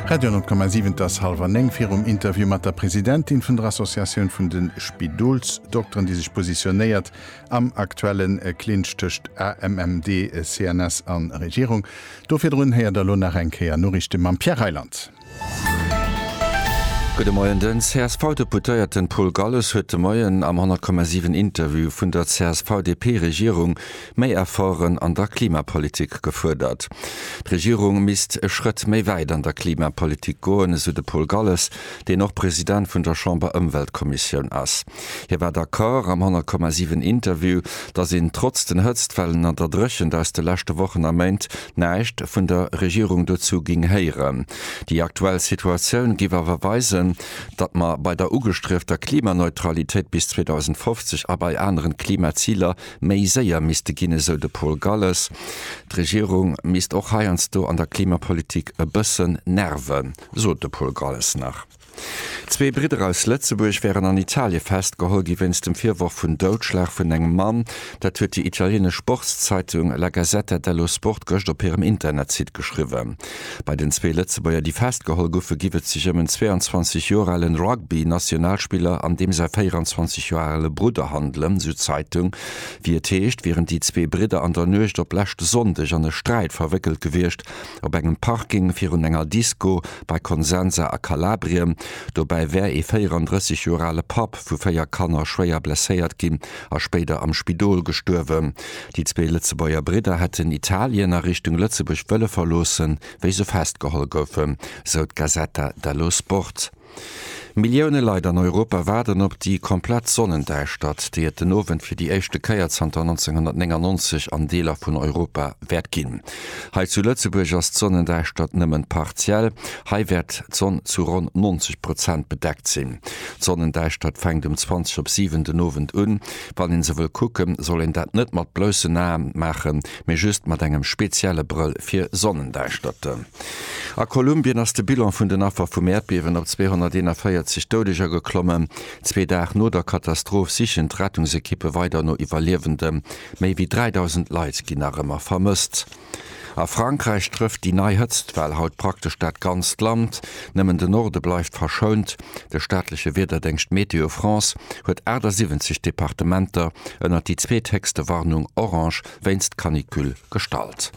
Radio 10,7 Et ass hallwer néng. Virum Interview mat der Presidentin vun der Associatioun vun de Spidolsdokteren, déi sech positionéiert am aktuelle Clinch tëscht AMMD, CNS a Regierung, do virdrun héiert der elo nach eng Kéier Noriichte mam Pierre Reyland. Gudde Moien. Den CSV-Deputéierten Paul Galles huet de Moien am 10,7 Interview vun der CSV-DP-Regierung Méi Efforten an der Klimapolitik gefuerdert. D'Regierung misst e Schrëtt méi wäit an der Klimapolitik goen, esou de Paul Galles, deen och President vun der Chamber-Ëmweltkommissioun ass. Hie war d'Accord am 100,7 Interview, datt een trotz den Hëtztwellen an der Dréchent aus de leschte Wochen a Méint näischt vun der Regierung dozou géing héieren. Déi aktuell Situatioun géif awer weisen, datt mer bei der ugestriefter Klimaneutralitéit bis 2050 a bei aneren Klimaziler méi séier misste ginn, esou de Paul Galles. D'Regierung misst och heiansdo an der Klimapolitik e bëssen nerven, sot de Paul Galles nach. Zwee Bridder aus Lëtzebuerg wären an Italie festgeholl gi wéinst dem Virworf vun Doudschlag vun engem Mann. Dat huet déi italieenesch Sportszeitung La Gazzetta dello Sport gëscht op hirem Internetsite geschriwwen. Bei den zwee Lëtzebuerger, déi festgeholl goufen, giff et sech ëm en 22 Joer ale Rugby-Nationalspiller an deem säi 24 Joer ale Brudder handelen, sou d'Zeitung. Wéi et heescht, wieren déi zwee Bridder an der Nuecht op leschte Sonndeg an e Sträit verwéckelt gewiescht, op engem Parking virun enger Disko bei Consenza a Kalabrien. Dobäi wär ee 34 Joer ale Papp vu véier Kanner schwéier blesséiert ginn a spéider am Spidol gestuerwen. Déi zwee Lëtzebuerger Bridder hätten Italien a Richtung Lëtzebuerg wëlle verloossen, wéi se festgeholl goufen, sou d'Gazzetta dello Sport. Millioune Leit an Europa waarden op déi komplett Sonnendäischtert, déi et den Owend fir déi éischte Kéier zanter 1999 an Deeler vun Europa wäert ginn. Hei zu Lëtzebuerg ass d'Sonnendäischtert nëmmen partiell, hei wäert d'Sonn zu ronn 90 Prozent bedeckt sinn. D'Sonnendäischtert fänkt um 20 op 7 den Owend un, Wann een se wëll kucken, soll een dat net mat bloussen Aen maachen, mee just mat engem spezielle Brëll fir Sonnendäischterte. A Kolumbien ass de Bilan vun den Affer vum Äerdbiewen op 241 Doudeger geklommen. Zwee Dag no der Katastroph sichen d'Rettungsekippe weider no Iwwerliewende. Méi wéi 3.000 Leit ginn nach ëmmer vermësst. A Frankräich trëfft déi nei Hëtztwell haut praktesch dat ganzt Land, nëmmen de Norde bleift verschount. De staatleche Wiederdéngscht Météo France huet 78 Departementer ënnert déi zweethéchste Warnung orange wéinst Canicule gestallt.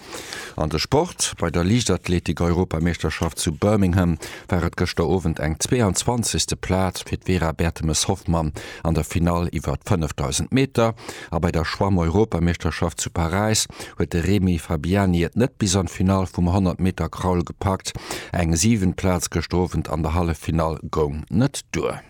An de Sport, Bei der Liichtathletik-Europameeschterschaft zu Birmingham war et gëschter Owend eng 22. Plaz fir d'Vera Bertemes-Hoffmann an der Finall iwwer 5.000 Meter. A bei der Schwammeuropameeschterschaft zu Paräis huet de Remy Fabiani et net bis an d'Finall vum 100 Meter Kraul gepackt. Eng siwent Plaz gëschter Owend an der Halleffinall goung net duer.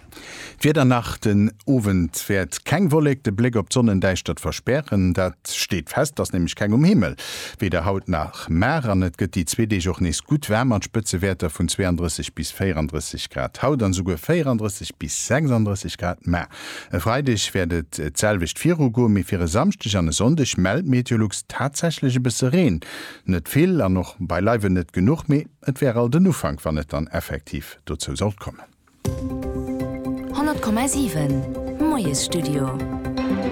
D'Wieder nach, Den Owend wäert keng Wollek de Bléck op d'Sonnendäischtert verspären. Dat steet fest, ass nämlech keng um Himmel, weder haut nach mar. An et gëtt déi zwee Deeg och nees gutt waarm mat Spëtzewäerter vun 32 bis 34 Grad haut an esouguer 34 bis 36 Grad mar. E Freideg wäert et d'selwecht viru goen, mee fir e Samschdeg an e Sonndeg mellt Meteolux tatsächlech e bësse Reen. Net vill an och beileiwen net genuch, mee et wär alt en Ufank, wann et dann effektiv dozou sollt kommen. 100,7 Moiesstudio.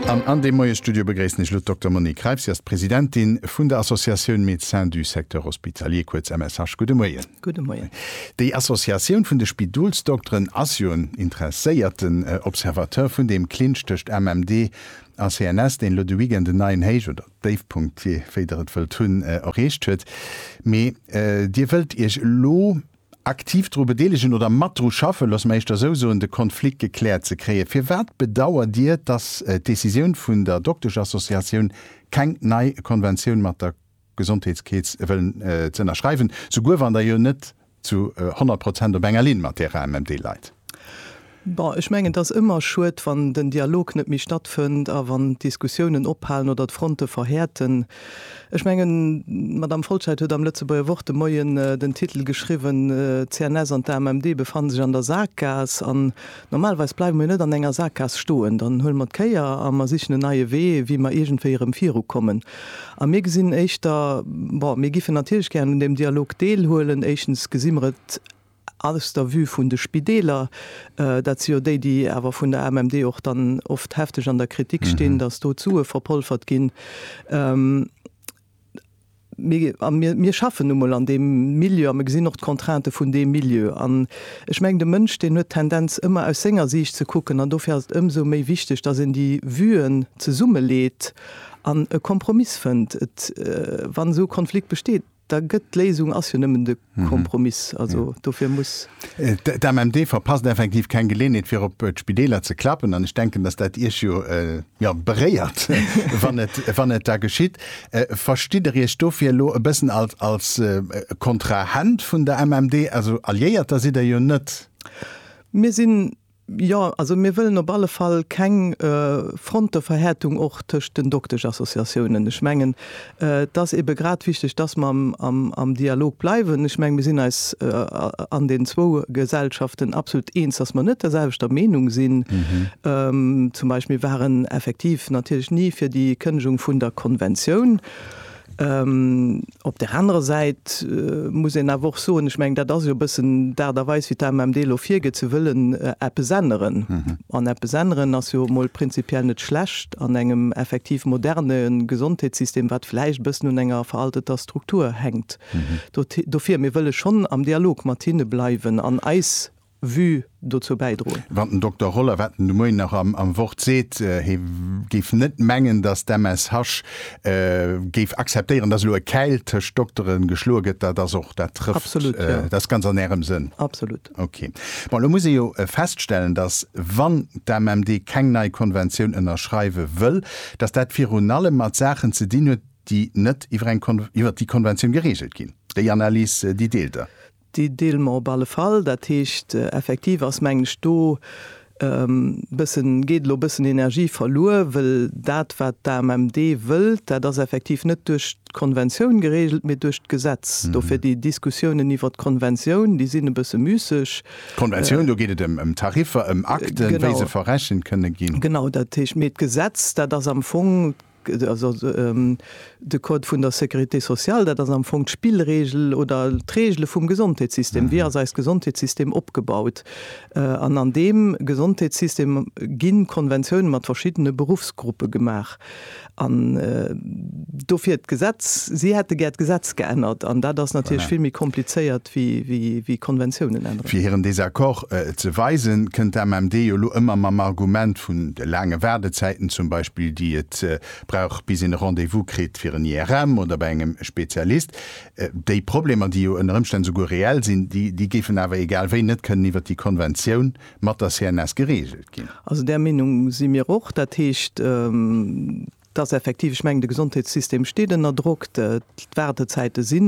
An an deem Moiesstudio begréissen ech elo d'Dokter Monique Reiff. Si ass d'Presidentin vun der Associatioun Médecins du Secteur Hospitalier, kuerz MSH. Gudde Moien. Gudde Moien. Déi Associatioun vun de Spidolsdokteren ass jo en interesséierten Observateur vun deem Clinch tëscht MMD a CNS, deen elo de Weekend en neien Héich oder Déifpunkt, jee wéi Der et wëllt hunn, erreecht huet. Mee Dir wëllt Iech elo aktiv dru bedeelegen oder mat dru schaffen, loosse mer éischter esou soen, de Konflikt gekläert ze kréien. Firwat bedauert Dir, datt d'Decisioun vun der Doktesch-Associatioun keng nei Konventioun mat der Gesondheetskeets wëllen ze ënnerschreiwen, souguer wann Der jo net zu honnert Prozent op enger Linn mat Därer MMD leit. Bon, ech mengen, et ass ëmmer schued, wann den Dialog net méi stattfënnt a wann d'Diskussiounen ophalen oder d'Fronte verhäerten. Ech mengen, d'Madame Folscheid huet am Lëtzebuerger Wort de Moien den Titel geschriwwen, D'CNS an d'AMMD befannen sech an der Saakgaass. An Normalweis bleiwe mir net an enger Saakgaass stoen, dann huele mer d'Kéier a mer sichen en neie Wee, wéi mer iergendwéi erëm virukommen. A mir gesinn éischter, bon, mir giffen natierlech gären un deem Dialog deelhuelen. Éischtens gesi mer et aus der Vue vun de Spideeler, dat si jo déi, déi awer vun der AMMD och dann oft hefteg an der Kritik stinn, datt do d'Sue verpolfert ginn. Mir schaffen nu mol an deem Milieu a mir gesinn och d'Contrainte vun deem Milieu. An ech mengen, de Mënsch deen huet d'Tendenz ëmmer aus senger Siicht ze kucken an dofir ass et ëmsou méi wichteg, datt een déi Vuen zesummeleet an e Kompromiss fënnt. Wann esou e Konflikt besteet, da gëtt d'Léisung ass jo nëmmen de. Kompromiss. Also dofir muss. D'AMMD verpasst effektiv keng Geleeënheet fir op d'Spideeler ze klappen an ech denken, datt dat Iech jo jo beréiert, wann et wann et da geschitt. Verstitt Der Iech dofir elo e bëssen als als Kontrahent vun der AMMD? Also Alliéierter sidd Der jo net. Mir sinn Jo, also mir wëllen op alle Fall keng Fronteverhärtung och tëscht den Dokteschassociatiounen. Ech mengen, et ass eebe grad wichteg, dass mer am Dialog bleiwen. Ech menge mir sinn eis an den zwou Gesellschaften absolut eens, dass mer net der selwechter Meenung sinn. Zum Beispill, mir waren effektiv natierlech ni fir déi Kënnegung vun der Konventioun. Op där anerer Säit muss een awer och soen, ech mengen, dat ass jo e bëssen d'Aart a Weis, wéi d'AMMD elo virgeet, se wëllen eppes änneren. An eppes änneren ass jo emol prinzipiell net schlecht an engem effektiv moderne Gesondheetssystem, wat vläicht e bëssen un enger veralteter Struktur hänkt. Dofir, mir wëlle schonn am Dialog mat hinne bleiwen an eis Vue dozou bäidroen. Wann den Dokter Roller, wat en de Moien nach am Wort seet, hie géif net mengen, datt d'MSH géif akzeptéieren, datt elo e Käil tëscht Doktere geschloe gëtt, dat ass och, dat trëfft, Absolut, jo. Dat ass ganz an Ärem Sënn. Absolut. Ok. Bon, elo muss ee jo feststellen, datt wann d'AMMD keng nei Konventioun ënnerschreiwe wëll, datt dat virun allem mat Saachen ze dinn huet, déi net iwwer eng Kon, iwwer déi Konventioun gereegelt ginn. Déi Analys, déi deelt Der? Déi deele mer op alle Fall. Dat heescht, effektiv ass, mengen ech, do bëssen, geet elo bëssen Energie verluer, wëll dat, wat d'AMMD wëllt, dat ass effektiv net duerch d'Konventioun geregelt, mee duerch d'Gesetz. Dofir déi Diskussiounen iwwert d'Konventioun, déi sinn e bësse müsseg. D'Konventioun, do geet et ëm Tariffer, ëm Akten, wéi se verrechent kënne ginn. Genau, dat heescht, mee d'Gesetz, dat ass am Fong De Code vun der Sécurité sociale, dat ass am Fong d'Spillregel oder d'Regele vum Gesondheetssystem. Wéi ass eist Gesondheetssystem opgebaut? An an deem Gesondheetssystem gi Konventioune mat verschiddene Beruffsgruppe gemaach. An dofir d'Gesetz, si hätte gär d'Gesetz geännert. An dat ass natierlech vill méi komplizéiert wéi Konventiounen änneren. Fir hiren Désaccord ze weisen, kënnt d'AMMD jo elo ëmmer mam Argument vun de laange Waardezäiten zum Beispill, déi et brauch bis een e Rendez-vous kritt fir en IRM oder bei engem Spezialist. Déi Problemer, déi jo ënner Ëmstänn souguer reell sinn, déi géifen awer egal wéi net kënnen iwwert déi Konventioun mat der CNS gereegelt ginn. Also där Meenung si mir och. Dat heescht. Et ass effektiv, ech mengen, de Gesondheetssystem steet ënner Drock. D'Waardezäite si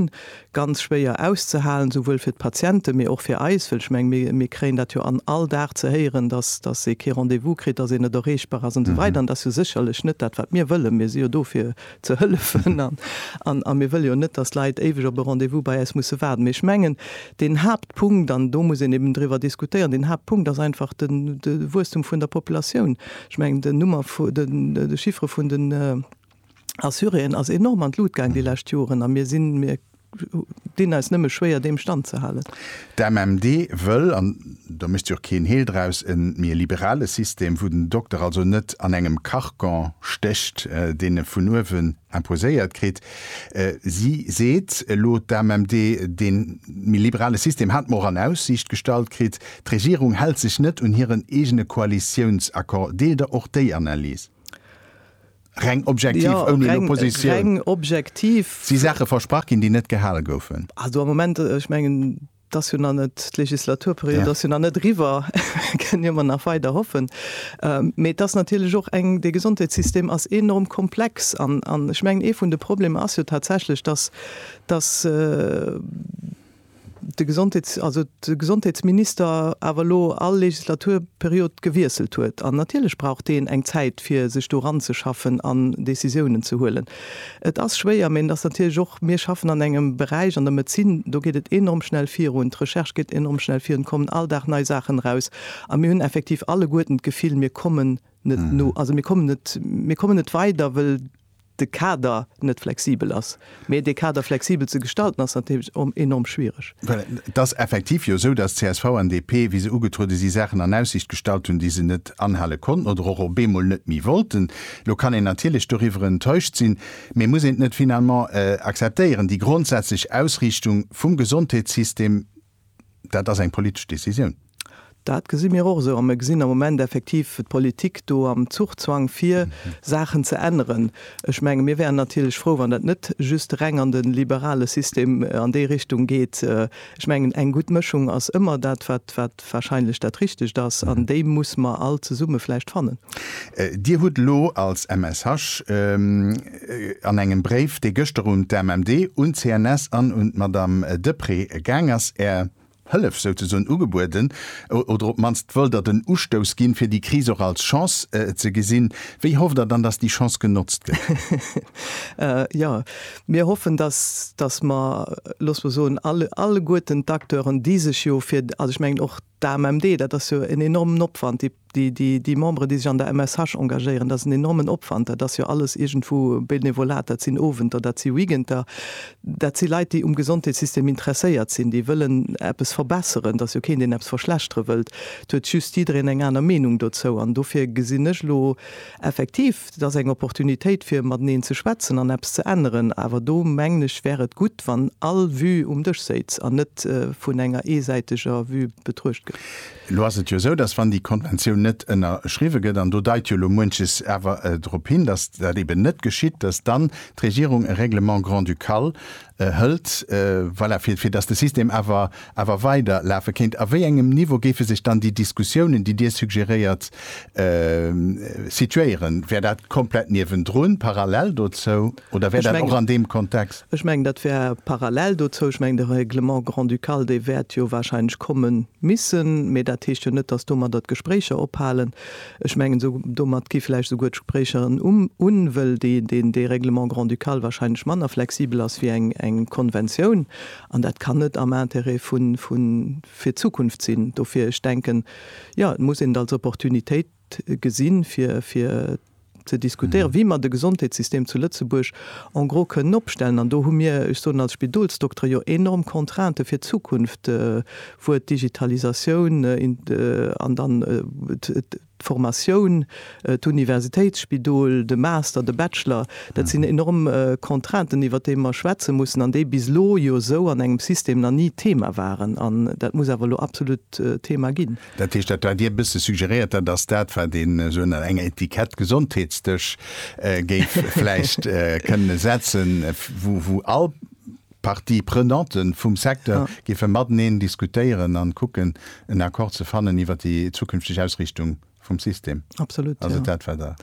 ganz schwéier auszehalen, souwuel fir d'Patienten, mee och fir eis. Well ech menge mir, mir kréien dat jo an all Dag ze héieren, dass, dass ee kee Rendez-vous kritt, dass een net erreechbar ass an esou weider. An et ass jo sécherlech net dat, wat mir wëllen. Mir si jo do fir ze hëllefen an, an, a mir wëlle jo net, dass Leit éiweg op e Rendez-vous bei eis musse waarden. Mee ech mengen, deen Haaptpunkt, an do muss een eben driwwer diskutéieren, deen Haaptpunkt ass einfach den, de Wuesstum vun der Populatioun. Ech mengen, den Nummer vu, de Chiffre vun den Assuréen ass enorm an d'Lut gaang déi lescht Joren a mir sinn, mir dinn eis nëmme schwéier deem Stand ze halen. D'AMMD wëll, an do mécht si och keen Heel draus, e méi liberale System, wou den Dokter also net an engem Carcan stécht, deen e vun uewen imposéiert kritt. Si seet elo, d'AMMD, dee méi liberale System hat mer och an Aussiicht gestallt kritt. D'Regierung hält sech net un hiren eegene Koalitiounsaccord. Deelt Der och déi Analys? Reng objektiv, ouni elo Positioun. Si Saache versprach ginn, déi net gehale goufen. T'ass jo nach net, d'Legislaturperiod ass jo nach net eriwwer, kënnen jo emmer nach weider hoffen. Mee t'ass natierlech och eng, dee Gesondheetssystem ass enorm komplex an, an ech mengen, ee vun de Problemer ass jo tatsächlech, dass, dass de Gesondheets, also de Gesondheetsminister awer elo all Legislaturperiod gewiesselt huet. An natierlech brauch deen eng Zäit, fir sech do eranzeschaffen an Decisiounen ze huelen. Et ass schwéier, mee et ass natierlech och, mir schaffen an engem Beräich, an der Medezin, do geet et enorm schnell virun, d'Recherche geet enorm schnell virun, et kommen all Dag nei Saachen eraus a mir hunn effektiv alleguerten d'Gefill, mir kommen net no, also mir kommen net, mir kommen net weider, wëll de Kader net flexibel ass. Mee dee Kader flexibel ze gestalten ass natierlech enorm schwiereg. Well et ass effektiv jo esou, dass csv an DP, wéi se ugetruede si Saachen an Aussicht gestallt hunn, déi se net anhale konnten oder och op eemol net méi wollten. Elo kann een natierlech doriwwer enttäuscht sinn, mee muss een et net finalement akzeptéieren? Déi grondsätzlech Ausriichtung vum Gesondheetssystem, dat ass eng politesch Decisioun. Dat gesi mir och esou a mir gesinn am Moment effektiv d'Politik do am Zuchzwang fir Saachen ze änneren. Ech menge mir wäeren natierlech frou, wann dat net just reng an de liberale System an déi Richtung geet. Ech mengen eng gutt Mëschung ass ëmmer dat wat wat wahrscheinlech dat Richtegt ass, an déi muss mer all zesumme vläicht fannen. Dir hutt elo als MSH an engem Bréif, dee gëschter un d'AMMD, un d'CNS an un d'Madame Deprez gaang ass, Är Hëllef souzesoen ugebueden, oder op d'mannst wëllt Der den Ustouss ginn, fir déi Kris och als Chance ze gesinn. Wéi hofft Der dann, dass déi Chance genotzt gëtt? Jo. Mir hoffen, dass, dass mer, loosse mer soen, alle, alleguerten d'Acteuren, déi sech jo fir, also ech mengen och d'AMMD, dat ass jo en enormen Opwand, déi, déi, déi, déi Memberen, déi sech an der MSH engagéieren, dat ass en enormen Opwand, dat ass jo alles iergendwou Benevolat, dat sinn Owenter, dat si Weekender, dat si Leit, déi um Gesondheetssystem interesséiert sinn, déi wëllen eppes verbesseren. Et ass jo keen, deen eppes verschlechtere wëllt. Et huet just jiddereen eng aner Meenung dozou. An dofir gesinn ech elo Effektiv, et ass eng Opportunitéit fir mateneen ze schwätzen an eppes ze änneren. Awer do mengen ech, wär et gutt, wann all Vue um Dësch séiz an net vun enger eesäiteger Vue betruecht gëtt. Elo ass et jo esou, datt wann déi Konventioun net ënnerschriwwe gëtt, an do deit jo elo muenches awer drop hin, datt dat eben net geschitt, datt dann d'Regierung e Règlement grand-ducal hëlt, voilà, fir, fir datt de System awer, awer weider lafe kéint? A wéi engem Niveau géife sech dann déi Diskussiounen, déi Dir suggeréiert, situéieren? Wär dat komplett niewendrun, parallel dozou, oder wär dat och an deem Kontext? Ech mengen, dat wär parallel dozou. Ech mengen, de Règlement grand-ducal, dee wäert jo warscheinlech komme misse, mä dat heescht jo net, datt domadder d'Gespréicher ophalen. Ech mengen, esou domat gi vläicht esouguer d'Gespréicher en Umm un, wëll dee Règlement grand-ducal wahrscheinlech manner flexibel ass wéi eng Konventioun. An dat kann net am Intérêt fir d'Zukunft sinn. Dofir, ech denken, jo, et muss een et als Opportunitéit gesinn, fir ze diskutéieren, wéi mer de Gesondheetssystem zu Lëtzebuerg en gros kënnen opstellen. An do hu mir, ech soen als Spidolsdokter, jo enorm Contraintë fir d'Zukunft, D'Wuert Digitalisatioun an dann d'Formatioun, d'Universitéitsspidol, de Master, de Bachelor, dat sinn enorm Contrainten, iwwert déi mer schwätze mussen an déi bis elo jo esou an engem System nach ni Thema waren. An dat muss awer elo absolut Thema ginn. Dat heescht, dat wat Dir e bësse suggeréiert, dat ass dat, wat een esou ënner enger Etikett Gesondheetsdësch géif vläicht kënne setzen, wou all D'Parties prenantes vum Secteur géife mateneen diskutéieren a kucken, en Accord ze fannen iwwert déi zukünfteg Ausriichtung vum System. Absolut, jo.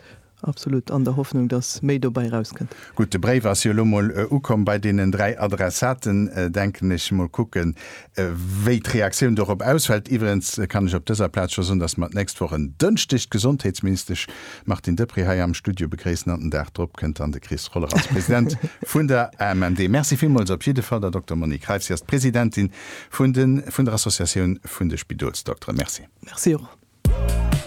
Absolut. An der Hoffnung, dass méi dobäi erauskënnt. Gutt, de Bréif ass jo elo mol ukomm bei deenen dräi Adressaten, denken ech. Mol kucken, wéi d'Reaktioun dorop ausfält. Iwwregens kann ech op dëser Plaz scho soen, dass mer d'nächst Woch en Dënschdeg d'Gesondheetsministesch Martine Deprez hei am Studio begréissen an den Dag drop kënnt dann de Chris Roller als President vun der AMMD. Merci villmools op jidde Fall der Dokter Monique Kreitz. Si ass d'Presidentin vun de vun der Associatioun vun de Spidolsdokteren. Merci. Merci och.